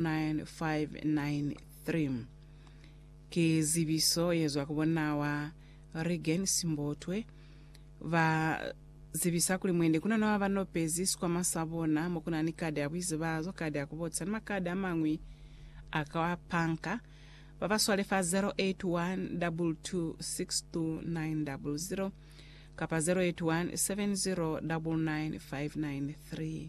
9593 Ki zibiso ye zwa ku bonna wa Reagan Simbotwe, ba zibisa kuli mwende kuna naba ba nopezi sikwama sa bona mo kuna ni kadi ya buizibazo, kadi ya ku botisa ni makadi a mañwi a kwa panka. Ba ba swale fa 0812262900 kapa 0817099593.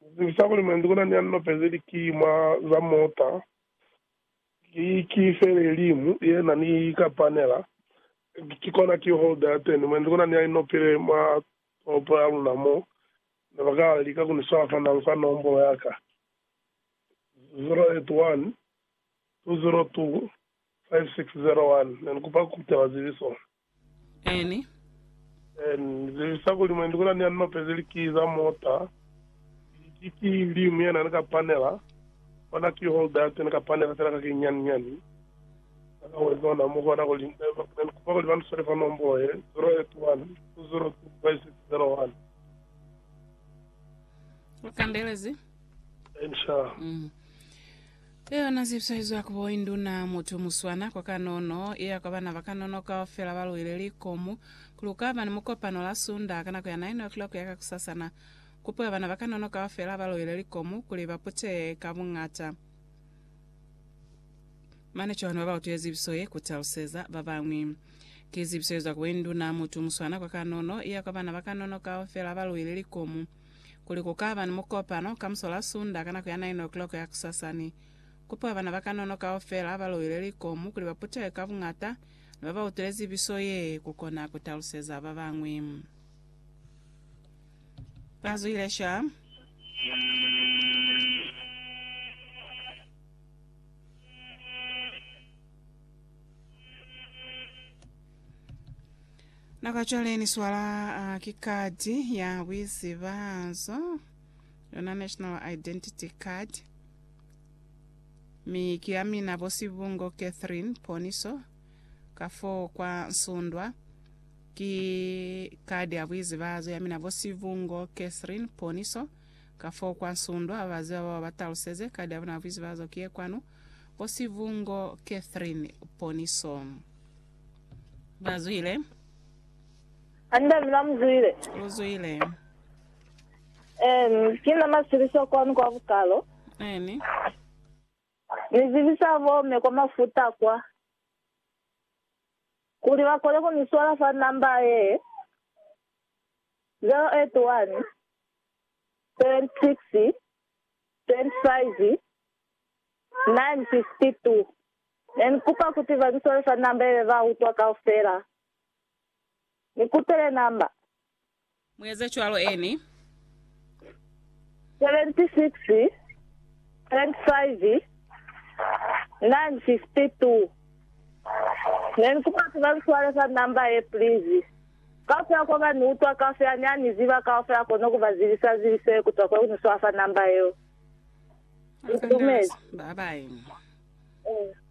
Ni zwisisa kuli mwendi kuna ni ya ni lopezi likima za mota. Ki, ki fele limu yena ni ka panela, ki kona key holder ya teni. Mwendi kuna ni ya ni nopile mwa toropo ya luna mo, ne ba kala lika ku ni swala fa nang fa nombolo ya ka, 081-202-5601. Ne ni kupa ku kutela zibiso. N. N. Lelisa kuli mwendi kuna ni anope ze likii za mota, liki ki liñwi yena ni ka panela, ona key holder ya teni ka panela fela ka kinyani nyani na ka wezi ona mu kona kuli ne ni kupa kuli ba ni swale fa nombolo ye 0812025601. Lu kandelezi? N. Sha. Ki yona zibiso izwa ku bo induna mutu muswana kwa kanono, iya kwa bana ba kanono kaufela ba luile likomu, ku lukaba ni mukopano la Sunda ka nako ya 9 o'clock ya kakusasana. Kupo ya bana ba kanono kaufela ba luile likomu kuli ba puteye ka buñata. Mane Johane wa ba utwile zibiso ye ku taluseza ba bañwi. Ki zibiso izwa ku bo induna mutu muswana kwa kanono, iya kwa bana ba kanono kaufela ba luile likomu. kuli ku ka ba ni mukopano ka musola Sunda ka nako ya 9 o'clock ya kusasani. Kupiwa bana ba kanono kaufela ba loile likomu kuli ba putehe ka buñata ni ba ba utwile zibiso ye, ku kona ku taluseza ba bañwi. Ba zwile shwa. Naka cwale ni swala uh, ki kadi ya buizibanzo yona national identity card mi ki ya mina bosibungo catherine poniso ka fo kwa nsundwa ki kadi ya buizibazo ya mina bosibungo catherine poniso ka fo kwa nsundwa babaziba bao bataluseze kadi ya bona ya buizibazo ki ye kwanu Ko Sivungo Catherine Poniso. Ba zwile. Andami na mu zwile. U zwile. Eni, ki na masiliso kwanu kwa bukalo. Eni. Ni zibisa bo me kwa mafuta kwa, kuli ba kone ku ni swala fa namba ye, 081 76 25 1952, Ne ni kupa kuti ba ni swalisa namba yebe ba utwa kaufela. Ni kutele namba. Mu eza cwalo eni. 76, 25, 952, Ne ni kupa kuti ba ni swalisa namba ye please. Kaufela kwa ba ni utwa kaufela, ni a ni ziba kaufela, kono ku ba zibisa zibisele kutwa kwe ku ni swafa namba yeo. Dumela. Bye bye.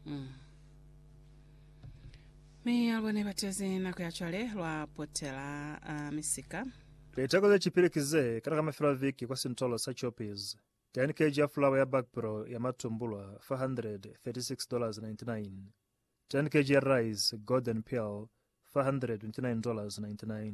Mm. Mi ya lubone batezi nako ya cwale lwa potela a misika. Liteko ze cipili ki ze kana ka mafelo a viki kwa sintolo sa Choppies. 10 kg ya fulawa ya bakpro ya matumbulwa, $436.99. 10 kg ya rice, Golden Pearl, $429.99.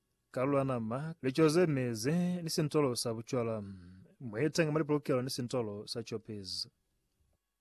Kalula nama, lico ze mezi, ni sintolo sa bucwala. Mu etenge mwa lipolokelo ni sintolo sa copies.